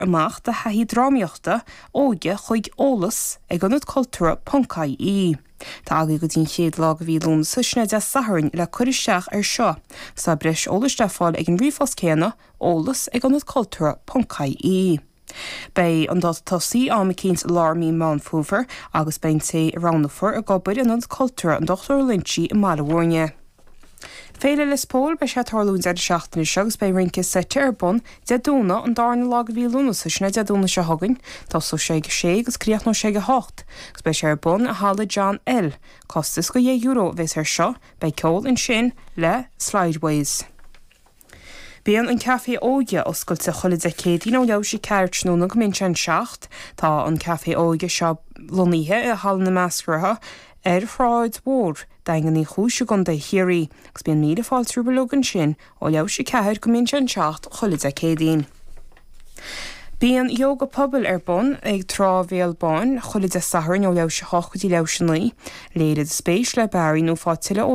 amach de thaithí drámaíochta óige chuig eolas ag ionad cultúrtha ponc ie Tá agaibh go dtí an chéad lá de mhí Lúnasa sin é Dé Sathairn le cur isteach ar seo agus tá breis eolais le fáil ag an ríomhphost céanna, eolas ag ionad cultúrtha ponc ie Beidh an dáta tosaí am eicínt lár mí Meán Fómhair agus beidh an té a roghnófar ag obair in Ionad Cultúrtha an Dochtúra Loinsigh i mBaile Mhúirne. Féile Lios Póil, Beidh sé ag tarlú an deireadh seachtaine seo agus beidh rince seite ar bun Dé Domhnaigh an darna lá de mhí Lúnasa, sin é Dé Domhnaigh seo chugainn. Tosóidh sé ag a sé agus críochnóidh sé ag a hocht agus beidh sé ar bun i Halla John L. Costas €2 a bheas air seo. Beidh ceol ansin le Slideways. Bíonn an Café Óige oscailte chuile Dé Céadaoin ó leathuair tar éis a ceathair tráthnóna go mbíonn sé an seacht. Tá an Café Óige seo lonnaithe i Halla na Measarthachta ar Shráid Mhór Daingean Uí Chúis i gContae Chiarraí agus bíonn míle fáilte romhaibh uilig ansin ó leathuair tar éis a ceathair go mbíonn sé an seacht chuile Dé Céadaoin. Bíonn Ióga Pobail ar bun ag Trá Bhéal Báin chuile Dé Sathairn ó leathuair tar éis a hocht go dtí leathuair tar éis a naoi. Léirigh do spéis le Barry nó faigh tuilleadh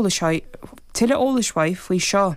eolais uaidh faoi seo.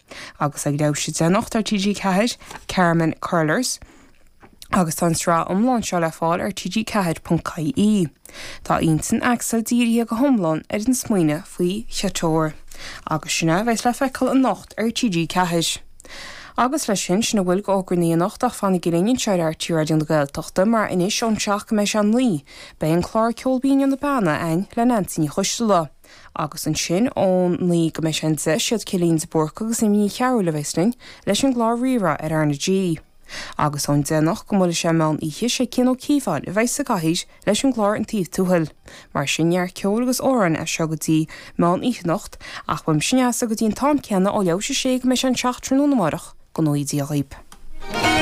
agus ag leathuair tar éis a deich anocht ar TG4, Carmen Curlers, agus tá an tsraith iomlán seo le fáil ar TG4 ponc ie. Tá intinn Axel dírithe go hiomlán ar an smaoineamh faoi Chiteor, agus sin é a bheas le feiceáil anocht ar TG4. Agus leis sin, sin a bhfuil de fhógraí ann anocht ach fanaigí linn anseo ar RTÉ Raidió na Gaeltachta mar anois ón seacht go mbeidh sé a naoi, beidh an clár Ceol Binn ó na Beanna againn le Neansaí Ní Choisdealbha. Agus ansin ón naoi go mbeidh sé an deich is iad Cillín de Búrca agus Amy Ní Chearbhaill a bheas linn leis an gclár Rí-Rá ar R na G. Agus ón déanach go mbuailfidh sé meán oíche sé Cian Ó Cíobháin a bheidh sa gcathaoir leis an gclár An Taobh Tuathail. Mar sin neart ceoil agus amhráin as seo go dtí meán oíche anocht ach beidh mise ar ais ag an am céanna ó leathuair tar éis a sé go mbeidh sé an seacht tráthnóna amárach go ngnóthaí Dia dhaoib.